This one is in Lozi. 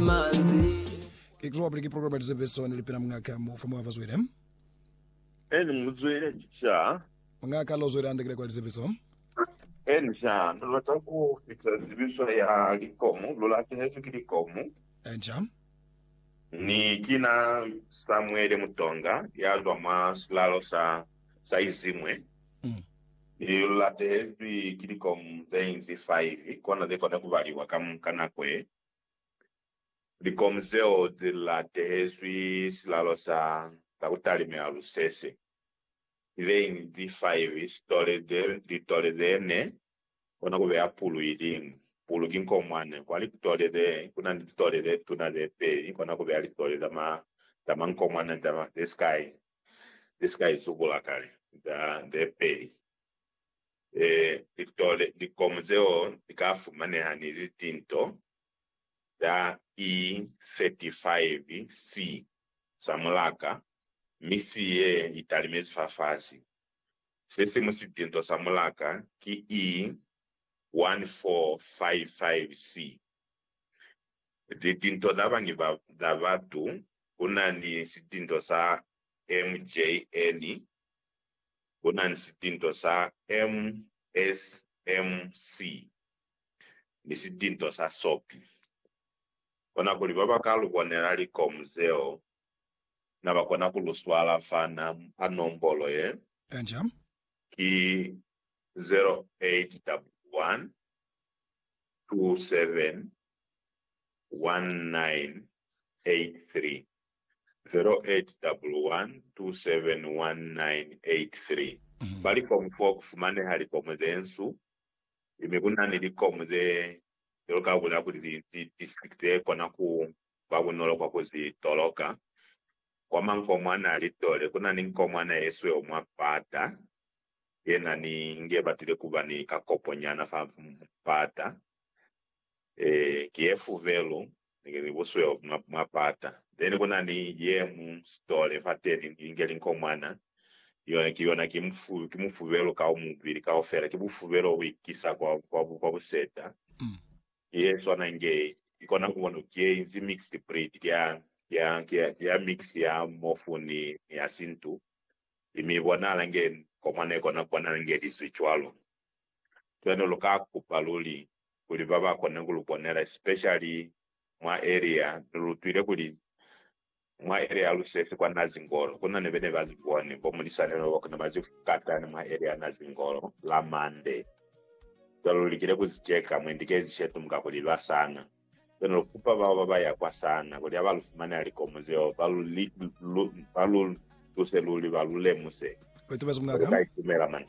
Ke kuzwa kwapili ki program ya lizebezo neli pena mungaka mu fa moya ba zwele. Eni muzwele sha. Mungaka lo zwele andekile kwa lizebezo. Eni sha, no lata ku fita zibiswa ya likomu, lu latehezwi ki likomu. Eni sha. Ni kina Samuele Mutonga ya zwa mwa silalo sa sa Izimwe, ni lu latehezwi ki likomu ze inzi 5 kona ze kona ku baliwa ka, ka nako ye. likomu zeo ze la tehezwi silalo sa za ku talimela lusese, ileñi zi faivi, sitole ze litole ze ne, kona ku beya pulu iliñwi. Pulu ki nko mwa ne kwa litole ze, ku na ni litole ze tuna ze peli, kona ku beya litole za ma, za manko mwa ne za, ze si ka, ze si ka izubula kale, za, ze peli. litole likomu zeo li ka fumaneha ni litinto za E35 C sa mulaka, mi si ye i talimezi fafasi. Se simu sitinto sa mulaka ki E1455 C. Litinto za bangi za batu ku na ni sitinto sa MJN ku na ni sitinto sa MSMC ni sitinto sa sopi. Kona kuli ba ba ka lu bonela likomu zeo na ba kona ku lu swala fa nombolo ye, Belgium. Ki 0811 27 0888271983 Ba likomu fo ku fumaneha likomu ze nsu, i mi ku na ni likomu ze cwalo ka ku la kuli li li district ze kona ku ba bunolo kwa ku zi toloka. Kwa mankomwana a litole, ku na ni nkomwana ye sweu mwa pata, ye na ni nge batile ku ba ni kakopo nyana fa pata. Ee, ki ye fuvelu ni busweu mwa, mwa pata. Then ku na ni ye mu stole fateni, ni linge linkomwana. Yona, ki yona, ki mufu, ki mufuvelu ka mubili kaufela. Ki bufuvelu bo bu ikisa kwa, kwa, kwa buseta. Ki ye swana inge i kona ku bona, ki ye inzi mixed breed, ki ya, ki ya, ki ya, ki ya mix ya mofu ni, ni ya sintu. I mi bonahala inge nkomwana i kona ku bonahala inge li zwi cwalo. Cwale lu ka kupa luli kuli ba ba kone ku lu bonela, especially mwa area. Ni lu utwile kuli mwa area ya Lusesi kwa Nazingolo ku na ni bene ba zibone bo mulisani lobo ku na ba zifukatani mwa area ya Nazingolo la Monday. Cwale lu likile ku zi cheka mwendi kezi shetu mu ka ku liba sana. Lu kana lu kupa bao ba ba ya kwa sana kuli ha ba lu fumanela likomo zeo, ba lu, lu, ba lu tuse luli ba lu lemuse kuli lu ka itumela mani.